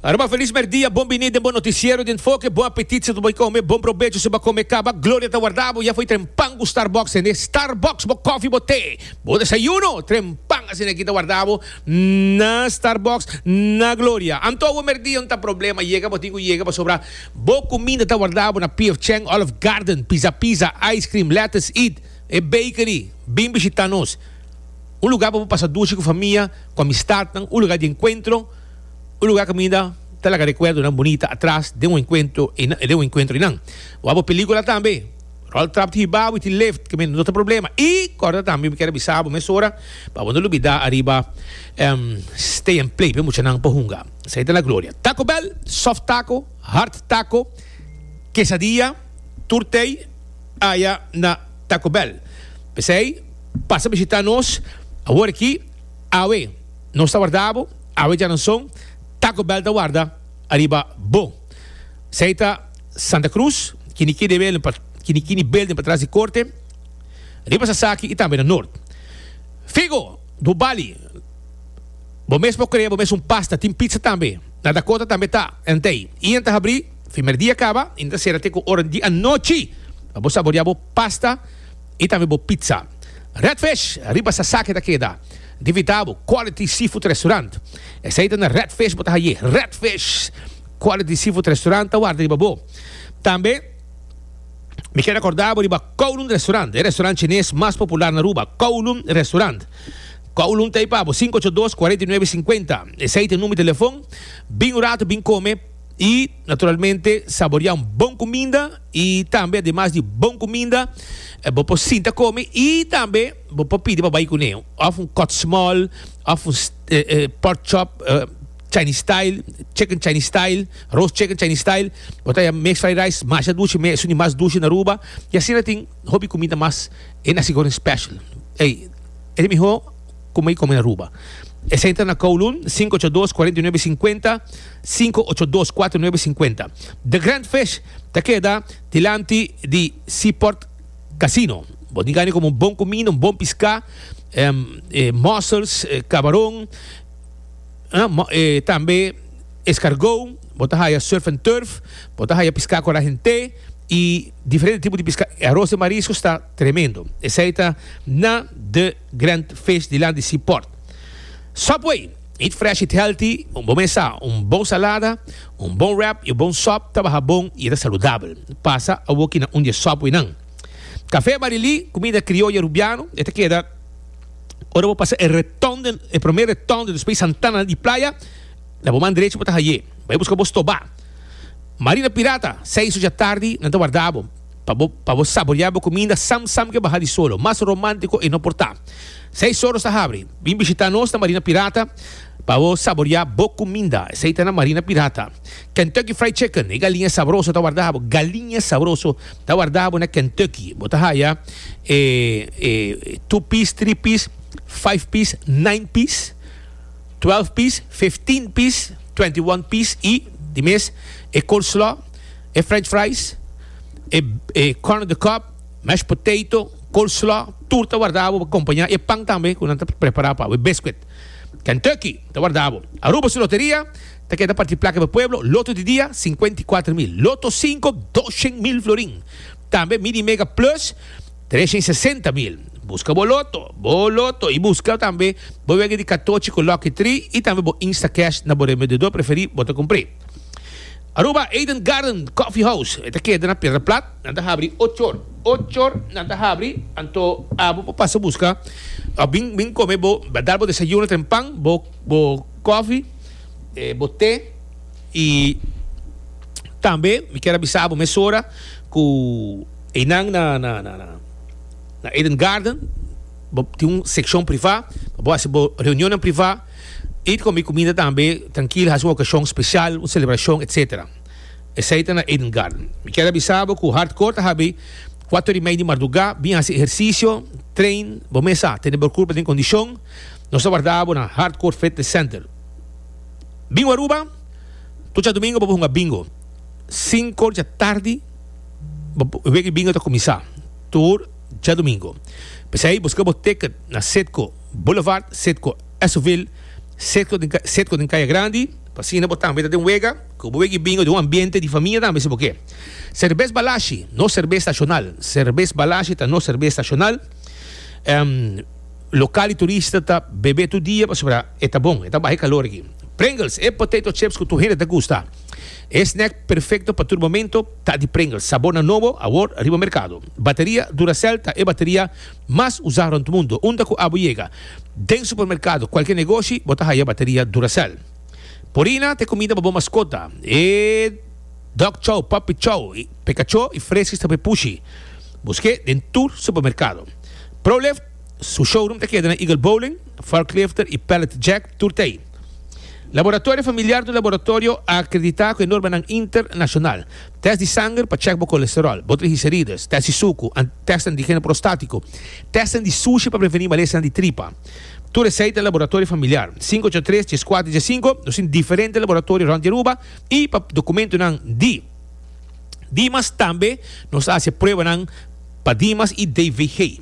Aruba Feliz Merdia, bon bini den bo noticiero di enfoke, bon apetit si ta bo come, bon probecho si bo a come caba, gloria ta warda bo, ya fo'i tren pan cu Starbucks hende, Starbucks bo coffee bo te, bo desayuno, tren pan asina aki ta warda bo, na Starbucks, na gloria, anto awo merdia no ta problema, yega bo tin cu yega pasobra bo cuminda ta warda bo na PF Chang, Olive Garden, Pizza Pizza, Ice Cream, Lettuce Eat, e bakery, bin bishita nos. un lugá pa bo pasa dushi ku famia, ku amistatnan, un lugá di enkuentro, un lugá ku aminda ta laga rekuerdonan bunita atras den un enkuentro den un enkuentro einan. Bo a bo pelíkula tambe, ròl trap ti hibá bo i tin lift, ke men no ta problema. I kòrda tambe mi kier a bisa bo mesora pa bo no lubidá ariba Stay and Play p'e muchanan pa hunga. Esei ta na Gloria. Taco Bell, soft taco, hard taco, quesadilla, tur tei. aya na Taco Bell. P'esei, pasa bishitá nos awor aki, awe nos ta warda bo, awe djaranson Taco Bell ta warda ariba bo. P'esei ta Santa Cruz, Quinicquinebel pa Quinicquinibel den patras di Corte, riba Sasaki i tambe na Noord. Figo, do Bali, bo mes por cree bo mes un pasta, tin pizza tambe. Na Dakota tambe ta, entei, i enta habrí. Primer dia kaba y no ta sera te ku ora di anochi pa bo saborea bo pasta y tambe bo pizza. Red Fish riba Sasaki ta keda. Di vita bo Quality Seafood Restaurant. Esei ta na Red Fish bo ta haye. Red Fish Quality Seafood Restaurant ta warda riba bo. Tambe mi keda korda bo riba Kowloon Restaurant, e restaurant chines mas popular na Aruba. Kowloon Restaurant. Kowloon ta ei pa bo, 582 49 50. Esei ta e number di telefon. Bin un rato, bin kome. Y naturalmente saborea un bon cuminda y tambe ademas di bon cuminda bo por sinta come y tambe bo por pidi pa bay cune of un cut small of un pork chop Chinese style, chicken Chinese style, roast chicken Chinese style, bo ta mixed fried rice masha dushi me esuni mas dushi na Aruba y asina tin hopi cuminda mas e nasi goreng special ey e ta mihor. Kuma i come Aruba. E centra na Kowloon, sinku ocho dos, kuarenta i nuebe, sinkuenta, sinku ocho dos, kuater i nuebe, sinkuenta. The Grand Fish ta keda dilanti di Seaport Casino. Bo tin gana di come un bon kumina, un bon piská, e mussels, kabaron, e tambe eskargou. Bo ta haya surf and turf, bo ta haya piská ku arahent'é i diferente tipo di piská. E aros di mariskos ta tremendo. Esei ta na The. Grand fish dilant di si port. Subway, Eat fresh, eat healthy, un bon mesa, un bon salada, un bon wrap i un bon sòp ta baha bon i e ta saludabel. Pasa awoki na un di e Subwaynan. Kafé Barilí, kumida krioyo Rubiano, e ta keda ora bo pasa e retonde, e promé retonde despues Santana di Playa, na bo man drechi bo ta haye. Bai buska bo stobá. Marina Pirata, seis ocho di atardi nan ta warda bo. Pa bo pa bo saboreá bo kuminda sam sam ke baha di solo, mas romántiko e no por ta. Seis oros ta habri. Bin bishitá nos na Marina Pirata pa bo saboreá bo kuminda. Esei ta na Marina Pirata. Kentucky Fried Chicken, e galiña sabroso ta wardá bo. Galiña sabroso ta wardá bo na Kentucky. Bo ta haya e e two piece, three piece, five piece, nine piece, twelve piece, fifteen piece, twenty one piece i di mes e coleslaw. e french fries, e e corn on the cob, mashed potato, coleslaw, tur ta wardá bo pa kompañá e pan tambe ku nan ta prepará pa bo, e biscuit. Kentucky ta wardá bo. Aruba su loteria ta keda partí plaka pa pueblo, loto di dia sinkuenta i kuater mil, loto sinku doshen mil florin, tambe mini mega plus treshen i sesenta mil. Buska bo loto, bo loto i buska tambe bo wega di katochi ku lucky tri i tambe bo instacash na bo remediador preferí bo ta kumpr'é. Aruba Eden Garden Coffee House e ta keda na Pedra Plat, nan ta habri ocho or, ocho or nan ta habri, anto abo por pasa buska of bin bin come bo a dar bo desayuno ten pan, bo bo coffee, bo te y tambe mi kier a bisa abo mesora cu eynan na na na na na Eden Garden bo tin un seccion priva pa bo haci bo reunionnan priva. Eet con mi comida tambe tranquil haci un ocasion special, un celebracion etc. Esey ta na Eden Garden. Mi kier a bisa bo cu hardcore ta habi cuatro ori mei di marduga, bin haci ehercicio, train, bo mes sa tene bor curpa den condicion, nos ta warda bo na Hardcore Fitness Center. Bingo Aruba, Tur djadomingo bo por hunga bingo, cinco dja tardi bo weki bingo ta cuminsa tur djadomingo. P'esey busca bo ticket na Citgo. Boulevard Cetco Esovil, Cetco den Kaya Grandi, pa asina bo tambe ta den wega ku bo wegi bingo den un ambiente di famia tambe si bo ke. Serbes Balashi, nos serbes nashonal, Serbes Balashi ta nos serbes nashonal, lokal i turista ta bebe tur dia pasobra e ta bon, e ta baha e kalor aki. Pringles, e potato chips ku tur hende ta gusta, e snack perfekto pa tur momento ta di Pringles, sabornan nobo awor riba merkado. Bateria Duracell ta e bateria. Mas usá rònt mundu. Unda ku abo yega? Den supermerkado, kualke negoshi, bo ta haya bateria Duracell. Purina ta e kumida pa bo maskota. E Dog Chow, Puppy Chow, i Pekacho i Freskis ta pa e pushi. Busk'é den tur supermerkado. Prolift su showroom ta keda na Eagle Bowling, Varklifter i Pallet Jack, tur ta ei. Laboratorio Familiar ta un laboratorio akreditá ku e normanan internashonal. Tèst di sanger pa chèk bo kolesteròl, bo trigliserides, tèst di suku, an, tèstnan di geno prostátiku, tèstnan di sushi pa prevení malesnan di tripa. Tur esei ta Laboratorio Familiar, sinku ocho tres, dies kuater, dies sinku. Nos tin diferente laboratorio rònt di Aruba i pa dokumentunan di Dimas tambe nos a hasi e pruebanan pa Dimas i DVG.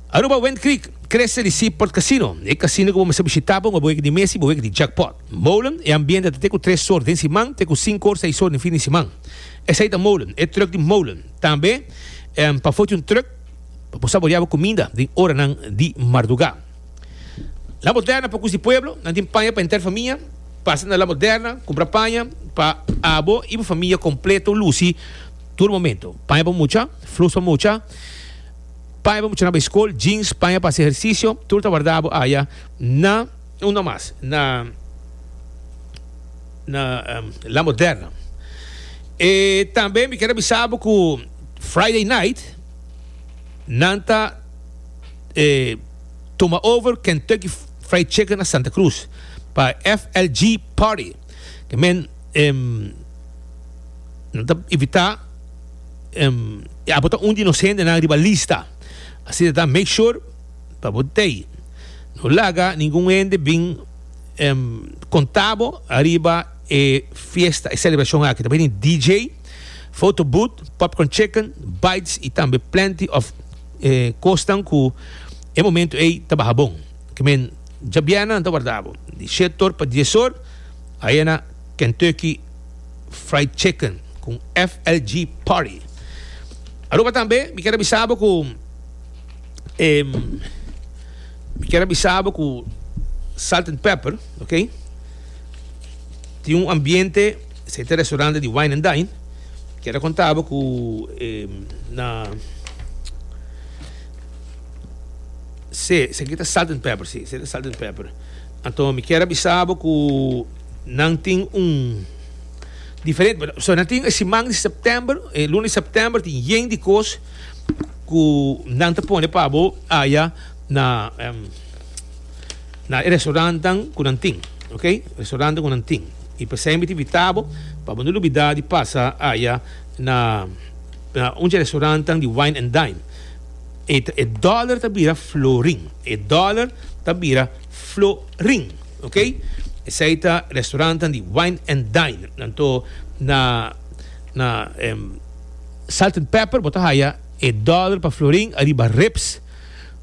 Aruba Wind Creek, Creste di Sea Port Casino, e casino cu bo mester bishita pa un abueg di mes y bueg di jackpot. Molen, e ambiente ta te cu tres or den siman te cu cinco or seis or den fin di siman. Esai ta Molen, e truck di Molen. Tambe pa Fortune Truck pa bo saborea bo cuminda den oranan di marduga. La Moderna Pocus di Pueblo, nan tin paña pa enter famia, pasa na La Moderna, cumpra paña pa abo y bo famia completo luci tur momento. Paña pa mucha, flus pa mucha. Paña bo muchanan bay school, jeans, paña pa haci ejercicio, tur ta warda bo aya na, un no mas, na, na um, La Moderna. E tambe mi kier a bisa bo cu Friday night nan ta e tuma over Kentucky Fried Chicken na Santa Cruz pa FLG party. Ke men em nan ta evitá em i abo ta un di nos hendenan riba lista. Asina ta make sure pa bo tei no laga ningun hende bin em konta bo ariba e fiesta, e selebrashon aki. Ta bini DJ, foto booth, popcorn chicken, bites i tambe plenty of e kosnan ku e momentu ei ta baha bon. Ke men djabièrna nan ta warda bo di shet or pa dies or ayè na Kentucky Fried Chicken ku FLG Party. Aruba tambe mi kier a bisa bo ku e mi kier a bisa bo ku Salt and Pepper, ok, tin un ambiente esei ta restaurante di wine and dine. Kier a konta bo ku e na Sí, esaki ta salt and pepper, sí, esaki ta salt and pepper. Anto mi kier a bisa bo ku nan tin un diferente, pero so nan tin e siman di september, e eh, luna di september tin yen di kos ku nan ta pone pa bo aya na em, na e restaurantenan ku nan tin, ok? Restaurantenan ku nan tin. I p'esei mi ta invita bo pa bo no lubida di pasa aya na, na un di e restaurantenan di wine and dine. E ta e dollar ta bira florin. E dollar ta bira florin. Ok. Esei ta restaurantan di wine and dine. Anto na na em salt and pepper bo ta haya e dollar pa florin ariba ribs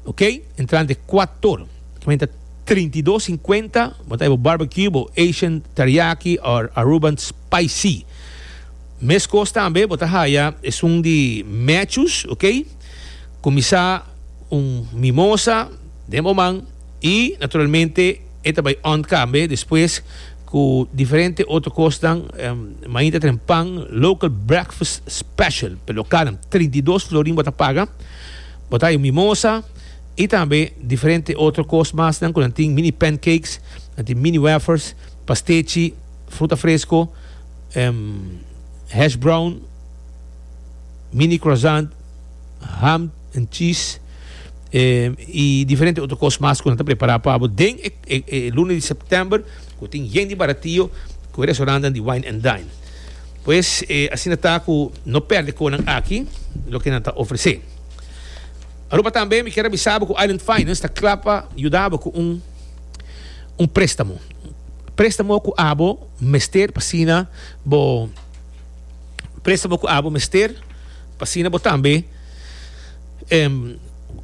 ok entrante cuator ta menta trinta y dos cincuenta bo ta haya bo barbecue bo Asian teriyaki or Aruban spicy. Mes cos tambe bo ta haya esun di mechus ok. Kuminsá un mimosa den bo man i naturalmente e ta bai on kambe despues ku diferente otro kosnan. Mainta tenen pan local breakfast special pa e lokalnan trinta i dos florin bo ta paga bo ta haña un mimosa i tambe diferente otro kos masnan ku nan tin mini pancakes nan tin mini wafers pastechi fruta fresko hash brown. mini croissant, ham and cheese y diferente otro cos mas cu nan ta prepara pa bo den e luna di september cu tin yen di baratio cu e restaurantenan di wine and dine. Pues asina ta cu no perde conan aki loke nan ta ofrece. Aruba tambe mi kier a bisa bo cu Island Finance ta cla pa yuda bo cu un un prestamo. Prestamo cu abo mester pa asina bo. presta bo cu abo mester pa asina bo tambe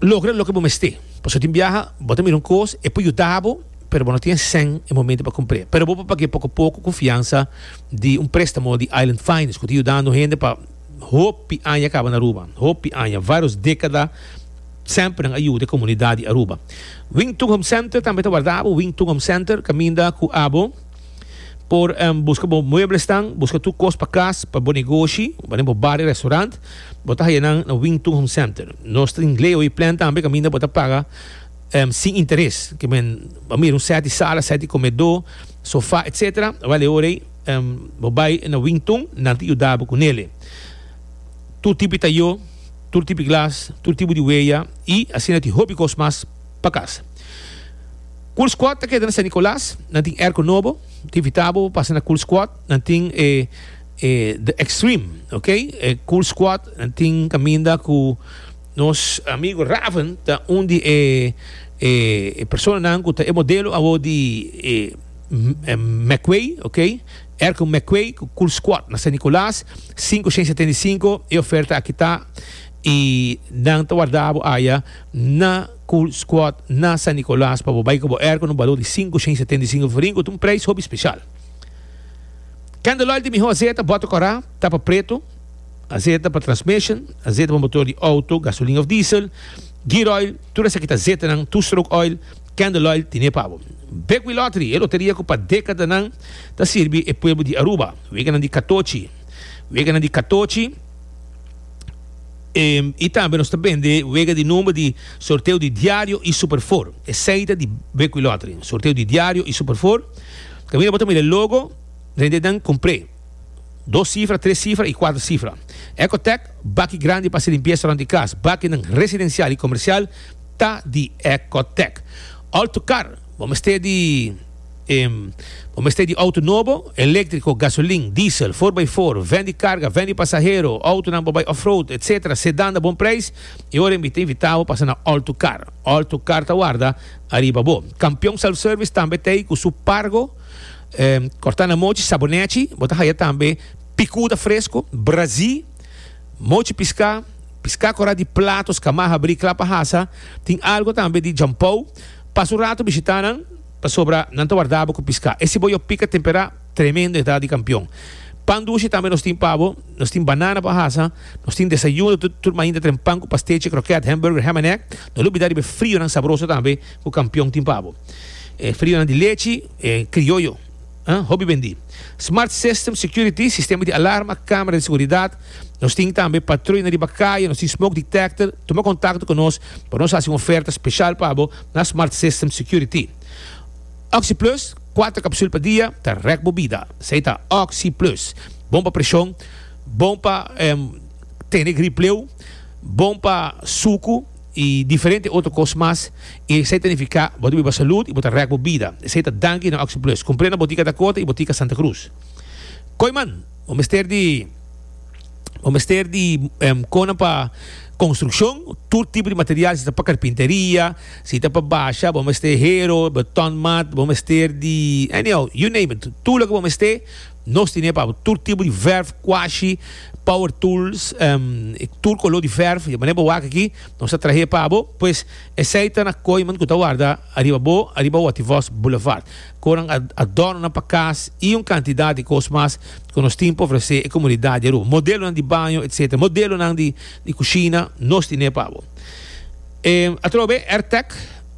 logra loke bo mester. Pasobra tin biaha bo ta mira un cos e por yuda bo pero bo no tin escen e momento pa cumpre. Pero bo por pague poco poco confiansa di un prestamo di Island Finance cu ta yudando hende pa hopi aña caba na Aruba, hopi aña, varios decada semper nan a yuda e comunidad di Aruba. Wington Home Center tambe ta warda abo, Wington Home Center caminda cu abo. Por buska bo mueblesnan, buska tur kos pa kas, pa bo negoshi, pa den bo bar i restaurant, bo ta haya nan na Wington Home Center. Nos ta tin Leo i Plan tambe kaminda bo ta paga sin interes. Ke men a mira un sèt di sala, sèt di komedó, sofá, etc. Bale ora ei bo bai na Wington, nan ta yuda bo ku nele. Tur tipo di tayó, tur tipo di glas, tur tipo di weya i asina tin hopi kos mas pa kas. Cool Squad ta keda na San Nicolas. Nan tin airco nobo. Te invita bo pa pasa na Cool Squad. Nan tin e e The Extreme, ok? E Cool Squad nan tin caminda cu nos amigo Raven ta un di e e e personanan cu ta e modelo awor di e McQuay, ok? Airco McQuay cu Cool Squad na San Nicolas sinku shen setenta i sinku. E oferta aki ta y nan ta warda bo aya na. Cool Squad na San Nicolas pa bo bay cu bo air con un balor di sinku shen setenta i sinku florin cu ta un prijs hopi special. Candle oil di miho azeta bota cora, tapa preto, azeta pa transmission, azeta pa motor di auto, gasolina of diesel, gear oil, tur esaki ta azetanan, two stroke oil, Candle oil tine pa bo. Bekwil Lottery, e loteria cu pa decadanan ta sirbi e pueblo di Aruba, weganan di catochi, weganan di catochi, I tambe nos ta bende wega di number di Sorteo di Diario y Super Four. Esey ta di Bekwui Lottery, Sorteo di Diario y Super Four. Kaminda bo ta mira e logo, rende nan compr'é. Dos cifra, tres cifra y cuatro cifra. Ecotec, baki grandi pa haci limpieza rond di cas, bakinan residencial y comercial ta di Ecotec. All to car, bo mester di. Bo mester di outo nobo, eléktriko, gasolin, diesel, for by for, vèn di karga, vèn di pasahero, outonan pa bai off-road, etc. Sedan ta bon preis i ora mi ta invitá bo pasa na All to Car. All to Car ta warda ariba bo. Kampion Self Service tambe ta ei ku su Pargo, kòrtá na mochi, sabonèchi. Bo ta haya tambe pikuda fresko, brazí, mochi piská, piská korá di platos, kamaha, bri, klapa hasa. Tin algu tambe di jampou. Pasa un ratu bishitá nan. Pasobra nan ta warda bo cu pisca. E ciboyo pica tempera tremendo e ta di campeon. Pan dushi tambe nos tin pa bo. Nos tin banana pa hasa. Nos tin desayuno tur tur mainta tren pan cu pastechi, croquet, hamburger, ham and egg. No lubida riba e frionan sabroso tambe cu campeon tin pa bo. E frionan di lechi, e crioyo. Hopi bendí. Smart System Security, sistema di alarma, camera di seguridad. Nos tin tambe patruina riba caye, nos tin smoke detector. Tuma contacto cu nos pa nos haci un oferta special pa bo na Smart System Security. Oxy Plus, cuater capsul pa dia, ta rek bo bida. Esey ta Oxy Plus. Bon pa presion, bon pa tene gripleu, bon pa sucu. i diferente otro kos mas, i esei ta nifiká bo ta biba salud i bo ta rèk bo bida. Esei ta danki na OxyPlus. Kumpré na botika Dakota i botika Santa Cruz. Kooiman, Bo mester di Bo mester di kona pa konstrukshon, tur tipo di material, si ta pa karpinteria, si ta pa basha, bo mester hero, betonmat, bo mester di, anyhow, you name it, tur loke bo mester, Nos tin e pa tur tipo di verf, kuashi, power tools, y tur color di verf, di manera bo wak aki, nos ta trahe pa bo. Pues, esey ta na koeman cu ta warda ariba bo, ariba Wativos Boulevard. Konan adornonan pa cas y un cantidad di cos mas cu nos tin pa ofrece e comunidad di Aruba. Modelonan di baño, etc. Modelonan di cushina, nos tin e pa bo. Atrobe, Airtec.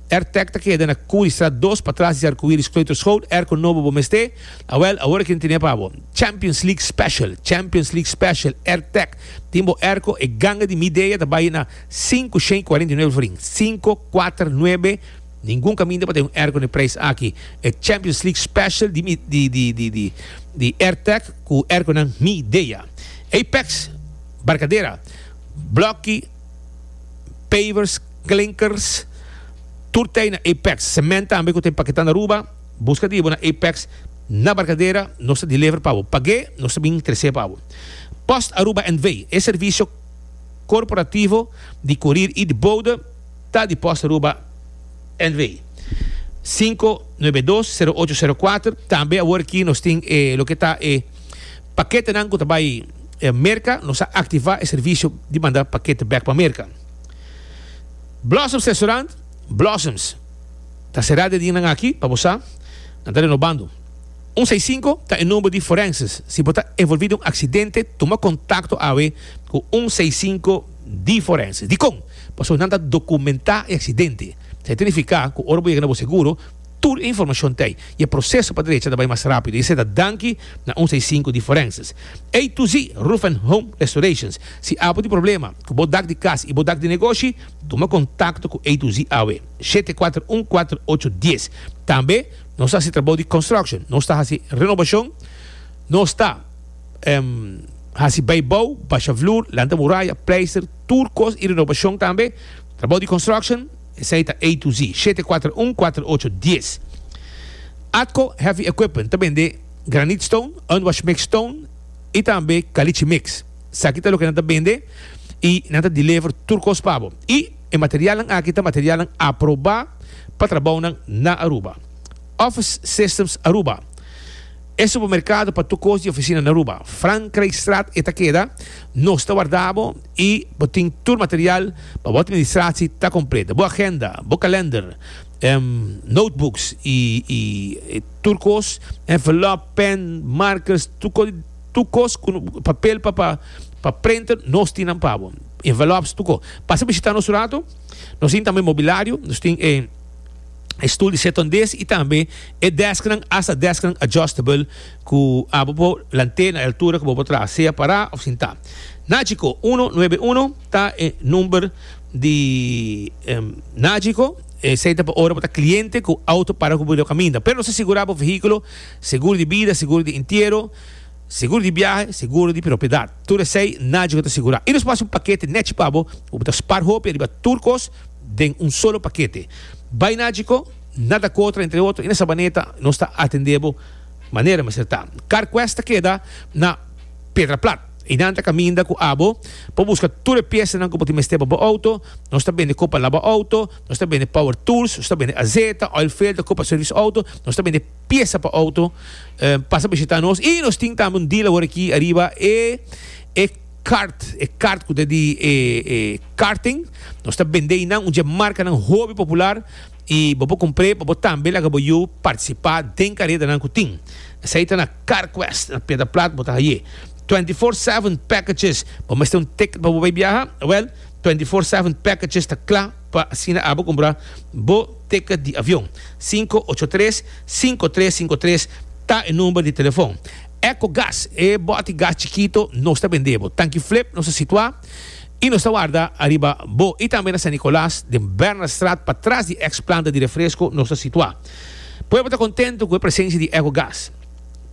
Airtag ta keda na Curiestraat dos patras di Arcoiris Kleuterschool, Airco Nobo bo mester? Awel, awor aki no tene pa bo. Champions League Special Champions League Special Airtag tin bo airco e ganga di mi dea ta bai na sinku shen kuarenta i nuebe florin sinku kuater nuebe ningun kaminda pa tin un airco n'e prijs aki e Champions League Special di mi di Airtag ku airconan mi dea Apex Barcadera Blokkie pavers, klinkers, tur tei na Apex, cement tambe cu ta empaqueta na Aruba, busca di bo na Apex na Barcadera, nos ta deliver pa bo, pag'e nos ta bin tres'e pa bo. Post Aruba NV, e servicio corporativo di courier y di bode ta di Post Aruba NV, sinku nuebe dos, sero ocho, sero kuater, tambe awor aki nos tin e loke ta e. Paketenan ku ta bai Merka, nos a aktivá e servisio di manda pakete bèk pa Merka. Blossoms Restaurant, Blossoms, ta será den dianan aki, pa bo sa, nan ta renobando. Un seis sinku ta e number di Forenses. Si bo ta envolví den un aksidente, tuma kontakto awe ku un seis sinku di Forenses. Dikon? Pasobra nan ta dokumentá e aksidente. Sa ta nifiká ku ora bo yega na bo seguro, Tur e informashon t'ei i e proseso pa derecha ta bai mas rápido i esei ta danki na un sei sinku di Forenses. A to Z Roof and Home Restorations. Si abo tin problema ku bo dak di kas i bo dak di negoshi, tuma kontakto ku A to Z awe, shete kuater un kuater ocho dies. Tambe nos ta hasi trabou di construction, nos ta hasi renobashon, nos ta hasi bai bou, basha flur, lanta muraya, pleister, tur kos i renobashon tambe, trabou di construction. Esei ta A to Z. Shete kuater un kuater ocho dies. Atco Heavy Equipment ta bende Granite Stone, Unwash Mix Stone y tambe Caliche Mix. Esaki ta loke nan ta bende y nan ta deliver tur cos pa bo. Y e materialnan aki ta materialnan aproba pa trabounan na Aruba. Office Systems Aruba. E supermerkado pa tur kos di ofisina na Aruba. Frankrijkstraat e ta keda, nos ta warda bo i bo tin tur material pa bo atministratie ta kompleto. Bo agenda, bo kalender, notebooks i tur kos, envelop, pen, markers, tur kos ku papel pa pa printer, nos tin nan pa bo. Envelops tur kos. Pasa bishita nos un rato. Nos tin tambe mobilario, nos tin e. e stul di setondés i tambe e dèsknan asta dèsknan adjustable ku abo por lant'é na e altura ku bo por traha, sea pará òf sintá. Nagico uno nuebe uno ta e number di Nagico, esei ta pa ora bo ta kliente ku outo para ku bo riba kaminda. Pero nos ta sigurá bo vehíkulo, seguro di bida, seguro di entiero, seguro di biahe, seguro di propiedat. Tur esei Nagico ta sigurá. I nos pasa un pakete nèchi pa bo ku bo ta spar hopi riba tur kos. den un solo pakete. Bai na Djiko, na Dakota, entre otro, i na Sabaneta nos ta atendé bo manera mester ta. Carquest ta keda na Pedra Plat i nan ta kaminda ku abo pa buska tur e piesanan ku bo tin mester pa bo outo. Nos ta bende kos pa laba outo, nos ta bende power tools, nos ta bende azeta, oil filter, kos pa sirvis outo, nos ta bende piesa pa outo. Pasa bishitá nos i nos tin tambe un dealer awor aki ariba e e. Kart, e kart ku ta di e karting, nos ta bend'é i nan un dje markanan hopi popular i bo por kumpr'é pa bo tambe laga bo yu partisipá den karetanan ku tin. Esei ta na Karquest na Piedra Plat bo ta hai'é. Twenty Four Seven Packages, Bo mester un ticket pa bo bai biaha? Wèl, Twenty Four Seven Packages ta kla pa asina abo kumpra bo ticket di avion. Sinku ocho tres, sinku tres sinku tres ta e number di telefòn. Ecogas, e boti gas chikito nos ta bendé bo. Tanki Flip nos ta situá i nos ta warda ariba bo i tambe na San Nicolas den Bernardstraat pa tras di eks planta di refresko nos ta situá. Pueblo ta kontento ku e presensia di Ecogas.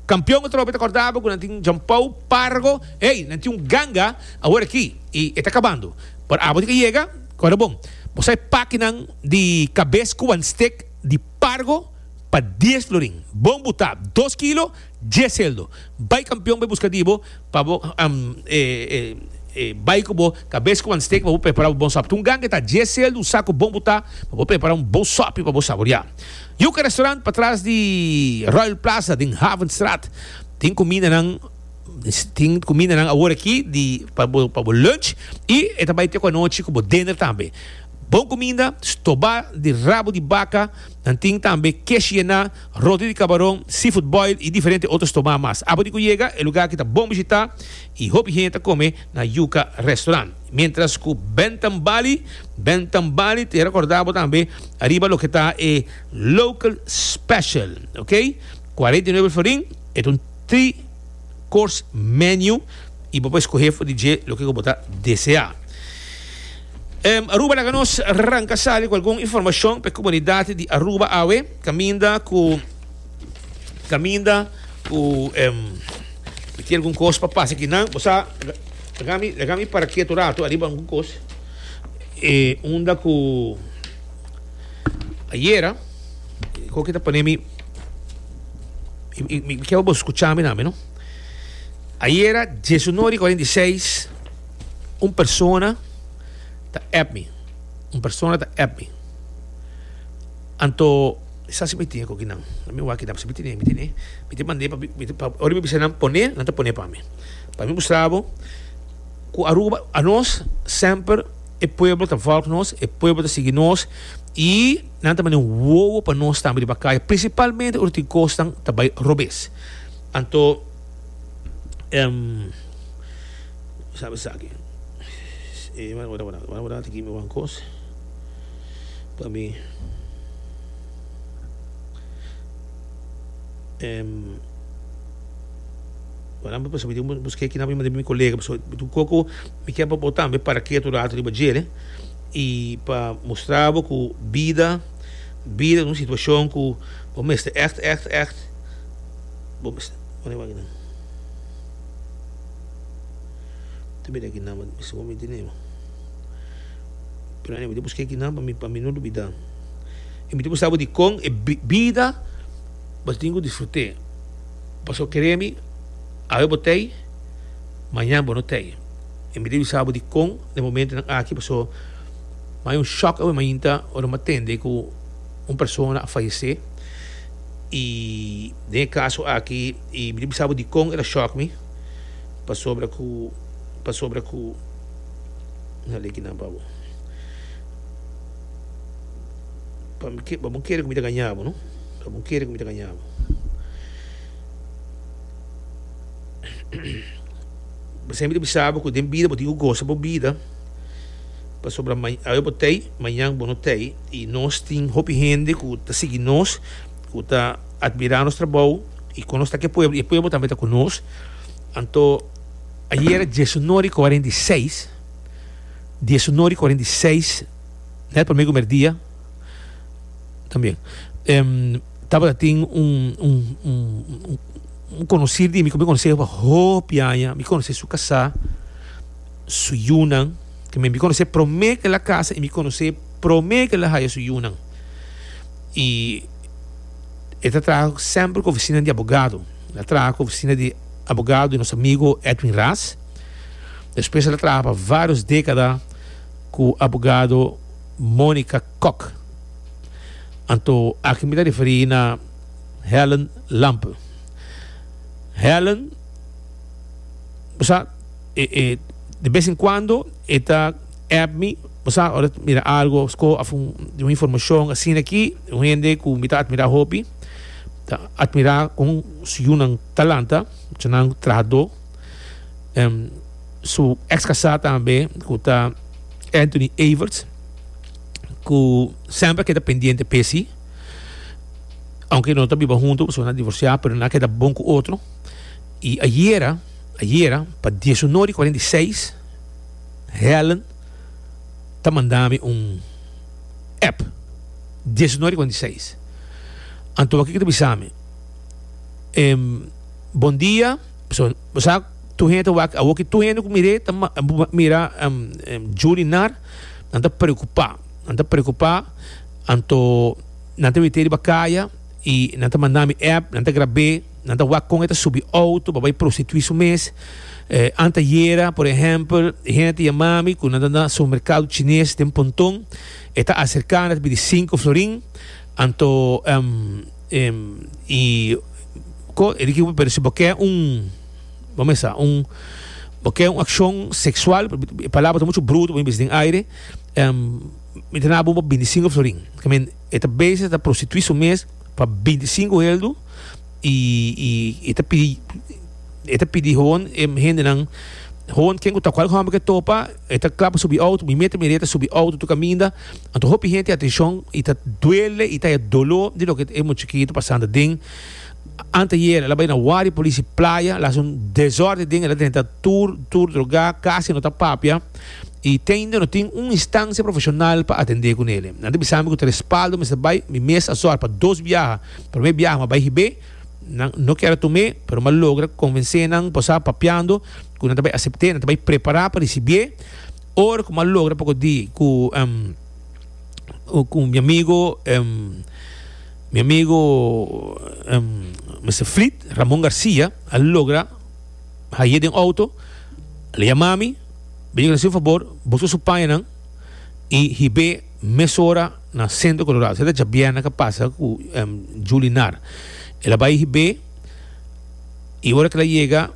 Kampion atrobe ta kòrda bo ku nan tin Jampou, Pargo, hey nan tin un ganga awor aki i e ta kabando por abo tin ke yega kòrda bon bo sai pakinan di kabes ku wan stik di Pargo pa dies florin bon butá dos kilo Djeseldo, Bai kampion bai buska di bo pa bo bai ku bo kabes ku ansteka pa bo prepara bo bon sòp. Tin un ganga e ta djeseldo, un saku bon butá pa bo prepara un bon sòpi pa bo saboriá. Yuka Restaurant patras di Royal Plaza den Havenstraat tin kumindanan tin kumindanan awor aki di pa bo pa bo lunch i e ta bai te ku anochi ku bo dinner tambe. Bon kuminda, stobá di rabu di baka. Nan tin tambe kesh yená, roti di kabaron, seafood boil i diferente otro stomá mas. Apati ku yega e lugá ki ta bon bishitá i hopi hende ta kome na Yuca Restaurant. Miéntras ku Bentham Bali, Bentham Bali ta rekordá bo tambe ariba loke ta e local special, ok. Cuarenta y nueve florin, e ta un tri. course menu y bo por escoge for di dje loke cu bo ta desea. Um, Aruba laga nos ranca sali cu algun informacion pe comunidad di Aruba awe, caminda cu caminda cu um, ti algun cos pa pasa aquí nan, bosa lagami lagami para quieto rato arriba algun cos e unda cu ayera, cu kita ponemi Mi, mi, mi quiero bo escuchar mi nami, no? Ayera, 1946, un persona ta app mi. Un persona ta app mi. Anto, sa si mi tiene con kinan. Mi waki dan, si mi tiene, mi tiene. Mi te mandé pa, mi te, pa, ori mi bisa nan pone, nan te pone pa mi. Pa mi mostrabo, ku Aruba, a nos, semper, e pueblo ta volg nos, e pueblo ta sigui nos, i Nan ta manda un wowo pa nos tambe riba kaya, prinsipalmente ora tin kosnan ta bai robes. Anto, em, mi sabi esaki. E, wara, wara, wara, wara, wara, ta gimi wan kos pa mi. Em, wara, mi ta pensa, mi tin busk'é kinan pa mi manda biba mi kolega, pasobra mi tin koko, mi ke pa bo tambe para ketu rato riba djere. I pa mustra bo ku bida, bida ta un situashon ku bo mester ègt, ègt, ègt, bo mester pone bo akinan. Ta mira akinan, bo ta mester wak mi tene bo. Pero anyway, mi ta busk'é akinan pa mi, pa mi no dubidá. I mi ta mustra bo dikon e bida bo ta tin ku disfrut'é. Pasobra kere mi, awe bo t'ei, mañan bo no t'ei. E mi ta bisa bo di kon den momentonan aki paso mi a hay un shock awe mainta ora mi a tende ku un persona a fayese i den e kaso aki i mi ta bisa bo dikon el a shock mi pasobra ku pasobra ku mi na leki nan pa bo pa mi ke pa bo kere ku mi ta gaña bo no pa bo kere ku mi ta gaña bo. Bo semper ta bisa bo ku den bida bo tin ku gosa bo bida, pasobra awe bo t'ei, mañan bo no t'ei. I nos tin hopi hende ku ta sigui nos, ku ta admirá nos trabou, i kon nos ta ku e pueblo, e pueblo tambe ta ku nos. Anto, ayera diesuno di kuarenta i seis, diesuno di kuarenta i seis, nèt promé ku merdia, también. Tabata tin un un konosir di mi ku mi konos'é pa hopi aña, mi konos'é su kasá, su yunan, te mi konos'é promé ku el a kasa i mi konos'é promé ku el a haya su yunan i e ta traha semper ku ofisina di abogado, el a traha ku ofisina di abogado di nos amigo Edwin Ras, despues el a traha pa vários dékada ku abogado Monica Kok. Anto aki mi ta referí na Helen Lampe. Helen, bo sa, e, e, di bes en kuando e ta app mi, bo sa, ora e ta mira algu sco of un, di un informashon asina aki, un hende ku mi ta atmirá hopi, ta atmirá kon su yunan talanta, eshonan trahadó. Su ex kasá tambe, ku ta Anthony Everts. ku semper a keda pendiente p'e si, aunke no ta biba huntu pasobra nan a divorsiá, pero nan a keda bon ku otro. I ayera, ayera pa diesuno di kuarenta i seis, Helen ta manda mi un app, diesuno di kuarenta i seis. Anto wak ke ta bisa mi? Em, Bondia, pasobra bo sa tur hende ta wak, awor ki tur hende ku mir'é ta mira Julie Nar. Nan ta preocupa, nan ta preocupa, anto nan ta mete riba caya y nan ta manda mi app, nan ta grab'e, nan ta wak con e ta subi auto pa bay prostitui su mes. Eh, antayera, por ehempel, e hende ta yamami cu nan ta na supermercado chines den Pontón, e ta acerca y nan ta pidi cinco florin, anto, ehm, ehm, y, co, e di ki, pero si bo ke un. Bo mesa un bo ke un akshon seksual e palabra ta muchu bruto bo a bisa den aire em mi ta na bo pa binti sinku florin ke men e ta bese ta prostitui su mes pa binti sinku heldu i i e ta pidi e ta pidi hoon e hendenan hoon ken ku ta kual hòmber ke topa e ta kla pa subi outo mi me ta mira e ta subi outo tur kaminda anto hopi hente atenshon i ta duele i ta haya dolo di loke e muchachito pasando den Anteayer el a bai na wak di policia Playa, el a haci un desorden den, el a drenta tur, tur droga, casi no ta papia y teinda no tin un instancia profesional pa atende cu nele. Nan ta bisami cu ta respaldo mester bai, mi mes a sor pa dos biaha, prome biaha mi a bai hib'é, nan no kier a tum'é, pero mi a logra convencé nan por sa papiando cu nan ta bai acept'é, nan ta bai prepara pa ricibi'é, ora cu mi a logra poco di cu mi amigo. Mi amigo Mister Fleet, Ramon Garcia, a logra haye den auto, le llama mi, ben haci un favor, busca su payanan y hibe mesora na Centro Colorado. Seta djabièrnè ka pasa cu Julie Nar. El a bai hibe y ora cu el a yega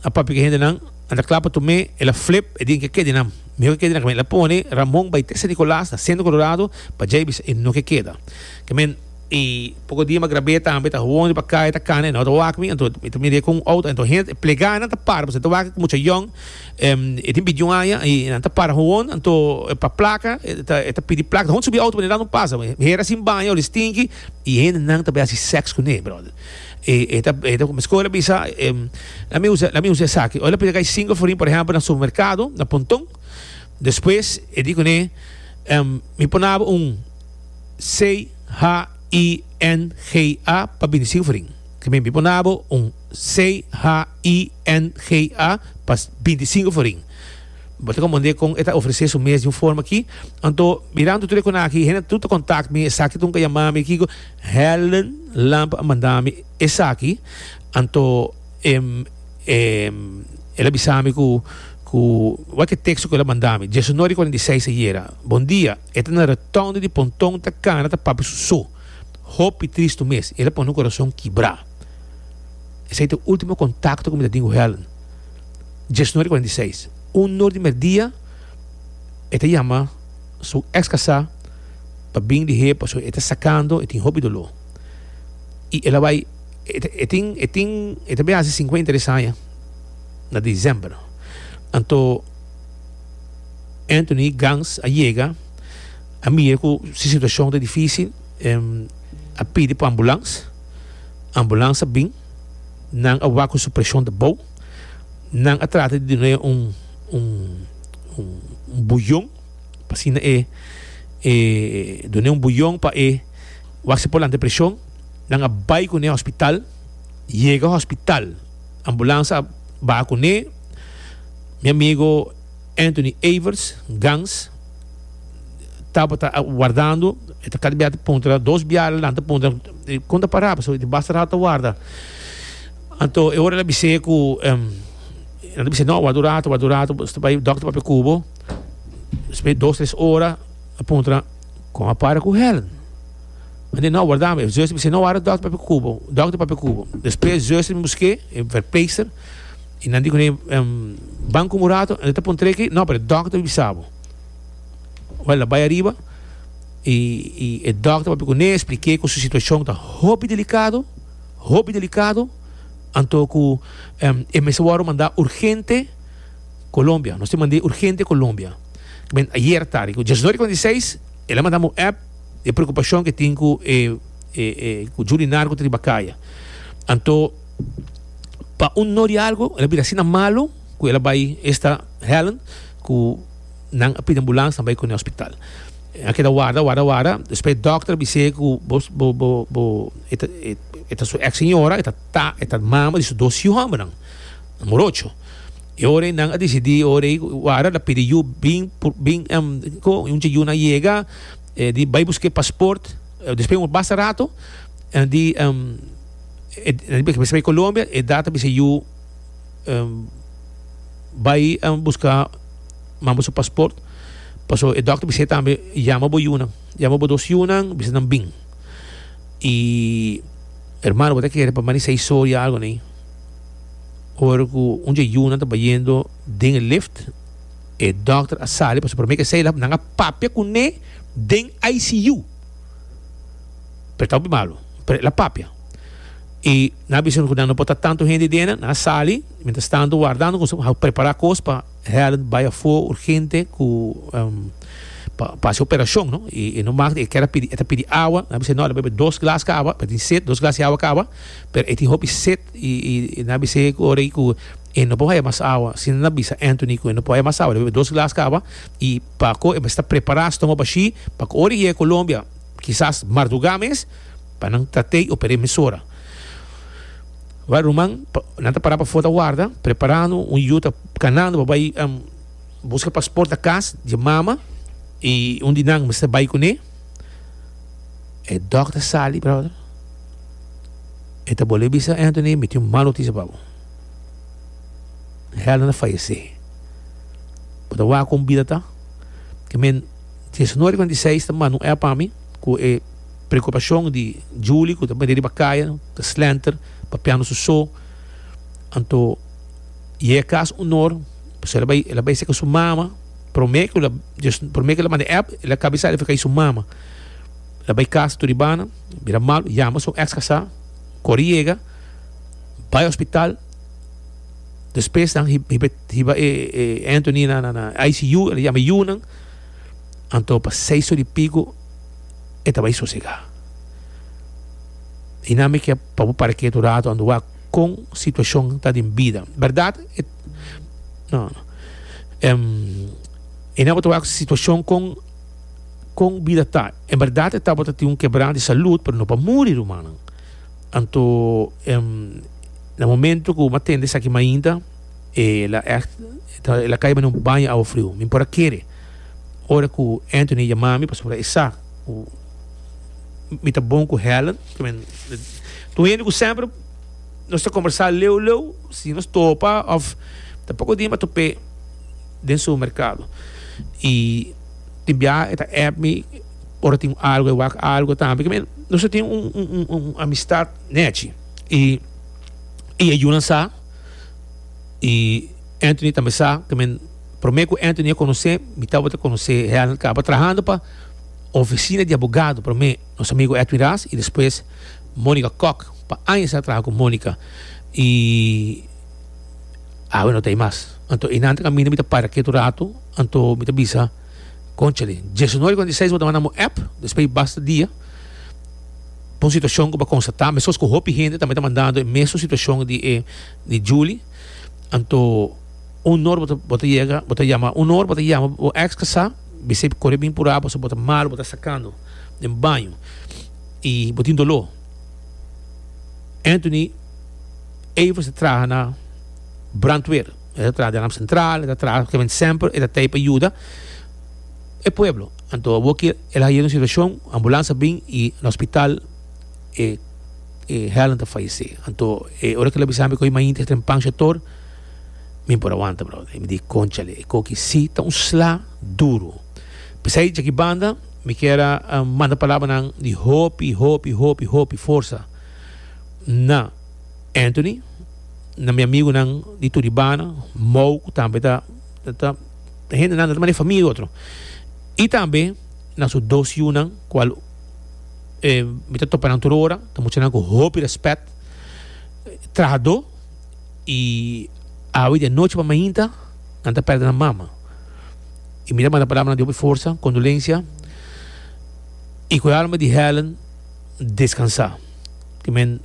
a papia cu e hendenan, nan ta cla pa Tomé, el a flip, e di nan ke keda nan, mihor ke keda nan. El a pone Ramon bai te San Nicolas na Centro Colorado pa djai bisa e no ke keda. Kimin i poko dia ma grab'é tambe ta hoon riba kaya ta kana e no ta wak mi anto mi ta mir'é ku un outo anto hende plegánan ta para pasobra ta wak ku mucha yòn e tin bidiu aña i nan ta para hoon anto pa plaka e ta e ta pidi plaka ta hoon subi outo pasobra nan no pasa mi hera sin baña ol'e stinki i hendenan ta bai hasi sèks kuné bròder e e ta e ta komesko el a bisa lami usa lami usa esaki ol a pidi kai sinku afurin por ehèmpel na supermerkado na pontòn despues e di kuné mi ponaba un. CHINGA pa bini Silvering. Ke men bipo na bo un CHINGA pa binti singu for ring. Bo ta komprende kon e ta ofrese su mes di un forma aki. Anto mirando tur e konaki, hende tur ta kontak mi, esaki tur nunka yama mi kiko, Helen Lamb a manda mi esaki. Anto el a bisa mi ku wak e teksto ku el a manda mi. Diesunoi di kuarenta i seis ayera. Bondia. E ta na retònde di pontòn, ta kana, ta papia su so. Hopi tristu mes. El a pone mi kurason kibrá. Esei ta e último kontakto ku mi ta tin ku Helen. Djesnori kuarenta i seis. Un nor di mèrdia e ta yama su èks kasá pa bin di he pasobra e ta sakando, e tin hopi doló. I el a bai, e tin, e tin, e ta bai hasi sinkuenta i tres aña na desèmber. Anto. Anthony Gans a yega, a mira ku si situashon ta difísil, em a pidi pa ambulans. Ambulans a bin, nan a wak ku su preshon ta bou. Nan a trata di dun'é un un buyon pa asina e e dun'é un buyon pa e wak si por lanta e preshon. Nan a bai kuné hospital. Yega hospital, ambulans a baha kuné. Mi amigo Anthony Evers, Gans, tabata wardando, e ta kada biaha ta puntra, dos biaha adelanti ta puntra, kon ta para, pasobra e tin basta rato ta warda. Anto e ora el a bis'é ku, nan ta bis'é, no, ward'u rato, ward'u rato, bo ta bai dòkter papia ku bo. Despues dos, tres ora, a puntra, Kon a para ku Helen? Anto e, no, wardami. E zuster a bis'é, no, ward'u dòkter papia ku bo, dòkter papia ku bo. Despues e zuster a bin busk'é, e verpleegster. Y nan di cu ne, em, ban cu murato, el ta pon trek ahí. No, pero e dokter a bisa bo. Wel, nan bai ariba y, y e dokter papia cu ne, expliqué cu su situacion ta hopi delicado, hopi delicado, anto cu, em, e mester wordo manda urgente Colombia. Nos tin mand'é urgente Colombia. K'men ayer tardi, cu djasnori con diseis, el a mandam un app di e preocupacion cu e tin cu e, e, e, cu Julie Narco ta riba caya. Anto. pa un no di algo el a bira asina malo cu el a bay esta Helen cu nan a pidi ambulans nan a bay cu ne hospital nan a keda warda warda warda despues e doctor a bis'e cu bo bo bo bo e ta e ta su ex señora e ta ta e ta mama di su dos hijo hombernan morocho y ora nan a decidi ora ey warda el a pidi yu bin por bin em co y un dje yu nan a yega di bay busca e pasport despues un basta rato di em e Colombia e data bisa yu bai a buska mambo su pasport paso e dokter bisa tambe yama bo yunan yama bo dos yunan bisa nan bin y hermano bo ta kere pa manisha historia algo ney ora loke un dje yunan ta bayendo den e lift e dokter a sali paso prome ke a sali nan a papia kune den ICU. Pero ta hopi malu. Pero e la papia. I nan a bisa nan ku nan no por ta tantu hende den nan. Nan a sali. Mientras tanto wardando kos hou prepara kos pa Helen bai afo urgente ku pa pa hasi operacion no. I e no mak di e kier a pidi. E ta pidi awa. Nan a bisa e no a bebe dos glas ka awa pasobra e tin set. Dos glas di awa ka awa pero e tin hopi set i i nan a bisa e ku orai ku e no por haya mas awa si nan a bisa Anthony ku e no por haya mas awa e debe bebe dos glas ka awa i pa ko e mester prepara stomach bashi pa ku ora e yega Colombia. Kisas mardugá mes pa nan ta tei o pere mesora. Wak ruman, nan ta pará pafó ta warda, preparando un yu ta kanando pa bai buska pasport na kas di e mama i un di nan mester bai kuné. E dòkter sali, bròder. E ta bolé bisa Anthony, mi tin un mal notisia pa bo. Helen a fayesé. Bo ta wak kon bida ta? Ke men. Diesinuebe kua di seis ta manda un app pa mi ku e preokupashon di Julie ku ta bini riba kaya, ta slenter papiando su so. Anto yega e kas un or, pasobra el a bai, el a bai seka su mama. Promé ku el a, promé ku el a manda e app, el a kabisa riba kaya di su mama. El a bai kas tur ribana, bira mal, yama su eks kasá, kore yega, bai hospital. Despues dan hiba e Anthony na ICU, el a yama e yunan. Anto pa seis or di pico e ta bai sosega. Y nan mi ke pa bo para ketu rato ando wak con situacion ta den bida. Verdad? E, no, no. Em, y nan bo ta wak situacion con con bida ta. En verdad e ta bo ta tin un kebrana di salud, pero no pa muri, rumannan. Anto, em, na momento ku bo ma tende esaki mainta, E la echt ta e la caiba n'e un baño awa friu. Mi por a kere ora cu Anthony a yama mi pasobra e sa cu mi ta bon cu Helen. Tin hende cu semper nos ta combersa leu leu si nos topa of ta poco dia mi a top'e den supermercado y tin bia e ta app mi ora tin algo e wak algo tambe. Ke men nos a tin un amistad nechi y e yunan sa. y Anthony tambe sa cu men prome cu Anthony a conoce mi tabata conoce Helen caba trahando pa oficina di abogado prome nos amigo Edwin Ras y despues Monica Kok pa añas a traha cu Monica y awe no ta ahi mas anto enan ta caminda mi ta para ketu rato anto mi ta bisa Conchale, diesnueve con diesseis bo ta manda bo app, despues di basta dia pa un situacion cu bo a constata, mescos cu hopi hende tambe ta mandando e mesun situacion di e di Julie, anto un or bo ta yega, bo ta yama, un or bo ta yama bo ex casa, bisey core bin pura pasobra bo ta malo, bo ta sacando den baño y bo tin dolor. Anthony Evers ta traha na brandweer. E ta traha den Ramp Central, e ta traha kiamente semper e ta tei pa yuda e pueblo. Anto awor ki el a haya un situacion, ambulans a bin y na hospital e e Helen ta fayece. Anto e ora ki el a bisa mi ku ey mainta e ta den pancha tor, mi por a wanta brother. Y mi di conchale, e koki si ta un sla duro. P'esey dje ki banda mi kier a manda palabranan di hopi, hopi, hopi, hopi forsa na. Anthony, na mi amigunan di tur di banda, Mou ku tambe ta ta ta hendenan ta mane famia i otro. I tambe na su dos yunan kual e mi ta topa nan tur ora, ta muchanan ku hopi rèspèt, trahadó i awe di anochi pa mainta nan ta pèrdè nan mama. I mi ta manda palabra di hopi forsa, kondolensia i ku e alma di Helen. descansá. Tin men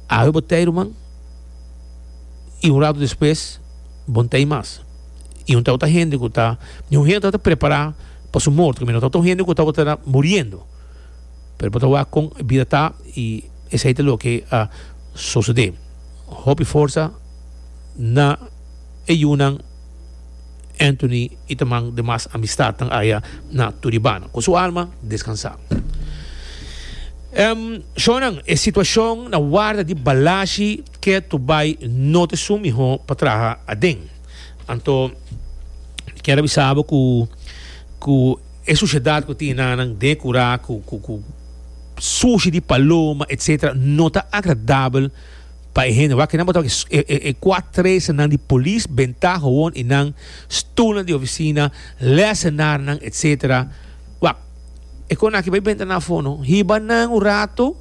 awe bo t'ei ruman i un rato despues bon t'ei mas. I un tawata hende ku ta ni un hende ku ta tabata prepará pa su morto kaminda tawata un hende ku tabata muriendo pero bo ta wak kon e bida ta i esei ta loke a sosodé. Hopi forsa na e yunan. Anthony i ta man de mas amistadnan aya na Turibana. Ku su alma deskansá. Em, shonnan, e situashon na warda di Balashi ke tur bai no ta esun mihó pa traha aden. Anto mi kier a bisa bo ku, ku e sushedat ku tin nannan den e kurá, ku, ku, ku sushi di paloma, etsetera, no ta agradabel. Pa e hende wak, kinan bo tabata ki e kuat tresanan di polis, bentá howon i nan stulnan di ofisina, lèsenarnan, etsetera. Wak, e kos nan aki bai benta nan afó no. Hiba nan un ratu,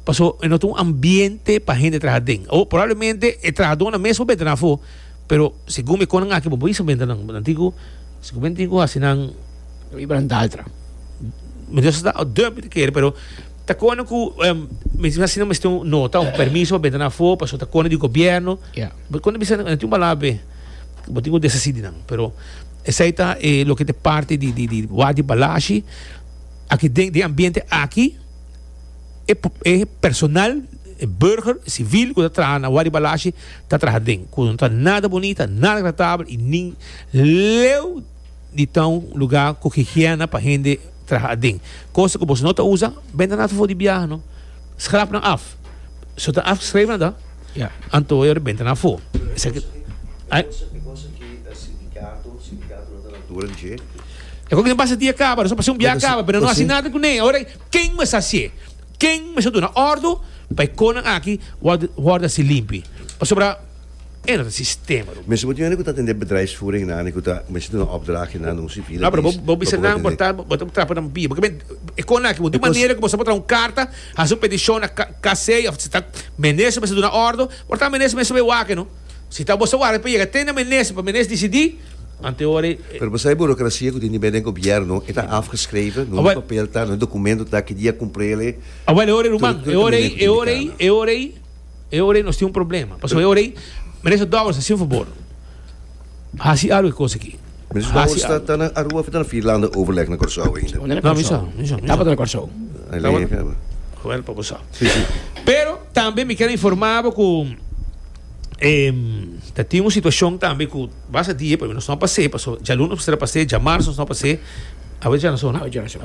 pasobra e no ta un ambiente pa hende traha aden. O probablemente e trahadónan mes por benta nan afó, pero segun mi e kos nan aki bo por bisa benta nan. Nan tin ku, si ku men tin ku hasi nan. Riba nan daltra. Mi ta sa dòrmi di kere, pero. Ta kòrda ku mester asina mester tin un nota, un permiso pa benta nan afó, pasobra ta kòrda di gobièrnu. Ya. Bo konta bisa nan tin un balada awe, bo tin ku desa sidi nan. Pero esei ta e loke ta e parti di di wak di Balashi. Aki den den ambiente aki e e personal, e burger, e sivil ku ta traha na wak di Balashi ta traha den ku no ta nada bonita, nada agratabel i nin leu. di ta un luga ku higiena pa hende traha aden. Kos ku boso no ta usa, benda nan afo di biaha no. Schrap nan af. So ta afgeschreven na ta, Ya. anto e benta nan afo. Esaki. E cosa ki e sindicato, sindicato no ta na altura di dje. E cosa ki no pasa dia caba, no pasa un biaha caba, pero no haci nada cu ne. Ahora, ken mester haci? Ken mester duna ordu pa e conan aki worde haci limpi? Pasobra. era ta sistema lo mes. Bo tin ane ku ta atendé bedrijfsvoering na ane ku ta mester duna opdrachi na un sivil a dies bo bisa nan bo ta bo ta trapa nan bia porque e kon aki bo di manera ku bo sa bo traha un karta hasi un petishon na KC of si ta minister mester duna ordo ora ta minister mester sabe wak no si ta bo sa wak pa yega te na minister pa minister disidi anteori pero bo sa e burokrasia ku tin di bende gobièrnu e ta afgeschreven no e papel ta no e dokumento ta kidia e kumprele awel e ora ei ruman e ora ei e ora ei e ora ei. E ora ei nos tin un problema. Pasobra e ora ei, Minister Dowers, hasi un fabor. Hasi algu e kos aki. Minister Dowers ta, ta na Aruba of e ta na Vierlande overleg na Corsou ainda? No, mi sa, mi sa. E tabata na Corsou. E lei fen bo. Bueno, pa bo sa. Si, si. Pero tambe mi kier a informa bo cu ta tin un situacion tambe cu basta die, pero nos no a pas'e, paso djalun nos a pas'e, djamarzo nos no a pas'e, awe dja na zona? Awe dja na zona.